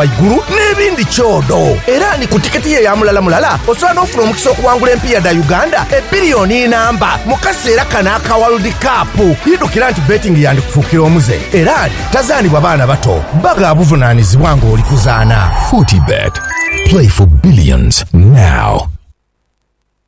ghaigulu n'ebindi kyodo. Era ni ku tiketi ye ya mulala mulala osobola n'ofuna omukisa okuwangula empiiya dha Uganda ebbiriyooni inamba mu kaseera kano aka World Cup. Idhukira nti betting yandikufuukira omuze era nti tazaanibwa baana bato, bba gha buvunaanizibwa ng'oli kuzaana. Fortebet, play for billions now.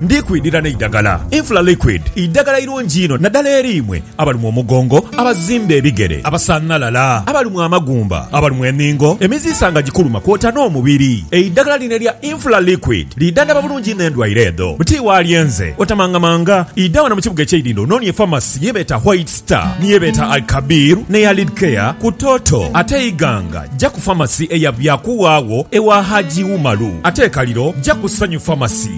Ndi kwidhira n'eidagala, Infla Liquid, eidagala eirungi inho nadala eri imwe abalumwa omugongo, abazimba ebigere, abasanhalala, abalumwa amagumba, abalumwa eningo, emiziisa nga gikuluma kwota n'omubiri. Eidagala lino erya Infla Liquid lidhandhaba bulungi inho endwaire edho. Buti wa lyenze, otamangamanga, idha wano mu kibuga eky'eidhindho ononie famasi ye beeta White Star, ni ye beeta Al-Kabir n'eya Lidcare ku Toto. Ate Iganga, ja ku famasi eya Byakuwaagho ewa Haji Umaru. Ate e Kaliro, ja ku Sanyu Famasi.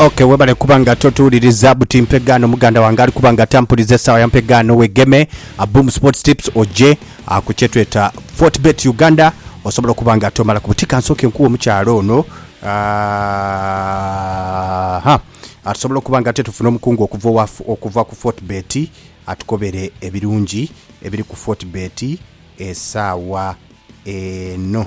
Okay, webale kuba nga totuwuliriza buti mpegaano muganda wange ali kuba nga tampuliza esaawa ya mpegaano wegeme a Boom Sports Tips oje ah, ku kyetweta Fortbet Uganda osobola okuba nga tomala ku buti kansooke nkuwe omukyala ono Ah, ha Ah, tusobola okuba nga ate tufuna omukungu okuva owa okuva ku Fortbet atukobere ebirungi ebiri ku Fortbet esaawa eno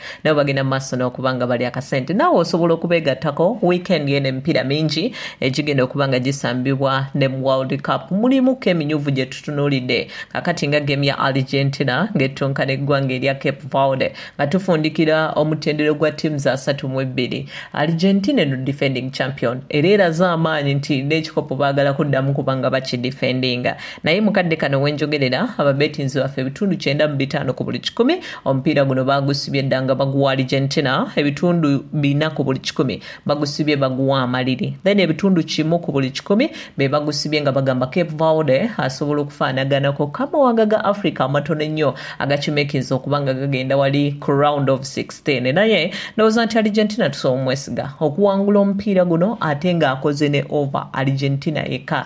Nabo bagenda mu maaso n'okuba nga bali akasente. Naawe osobola okubeegattako. Wiikendi eno emipiira mingi egigenda okuba nga gisambibwa ne mu World Cup mulimuku emyuvu gye tutunuulidde kaakati nga geemu ya Argentina ng'ettunka n'eggwanga erya Cape Verde nga tufundikira omutendera ogwa ttiimu za satu mu ibbiri. Argentina eno defending champion era eraze amaanyi nti n'ekikopo baagala kuddamu kuba nga bakidifendinga. Naye mu kadde kano we njogerera, ababeetinzi baffe ebitundu kyenda mu bitaano ku buli kikumi Omupiira guno baagusibye dda nga baguwa Argentina, ebitundu bina ku buli kikumi bagusibye baguwa amaliri, then ebitundu kimu ku buli kikumi be bagusibye nga bagamba Cape Verde asobola okufaanaganaku k'amawanga ga Africa amatono ennyo agakimekinze okuba nga gagenda wali ku round of sixteen naye ndowooza nti Argentina tusobola omwesiga okuwangula omupiira guno ate ng'akoze ne over Argentina yekka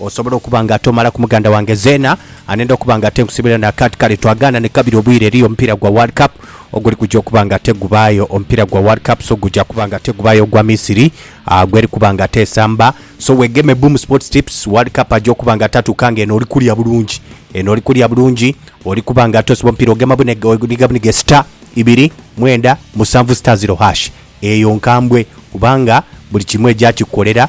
Osobola okuba nga tomala ku muganda wange Zeena anenda okuba nga tenkusibira na kati kale twagaana ni kabiri obwire eriyo omupiira gwa World Cup oguli kuja okuba nga tegubaayo. Omupiira gwa World Cup so guja kuba nga tegubaayo ogwa Misiri gweri kuba nga tesamba so wegeme Boom Sports Tips World Cup aja okuba nga tatuuka nga eno oli kulya bulungi eno oli kulya bulungi oli kuba nga tosiba omupiira ogema buniga buniga star ibiri mwenda musanvu star ziro hash eyo nkambwe kubanga buli kimu eja kikukolera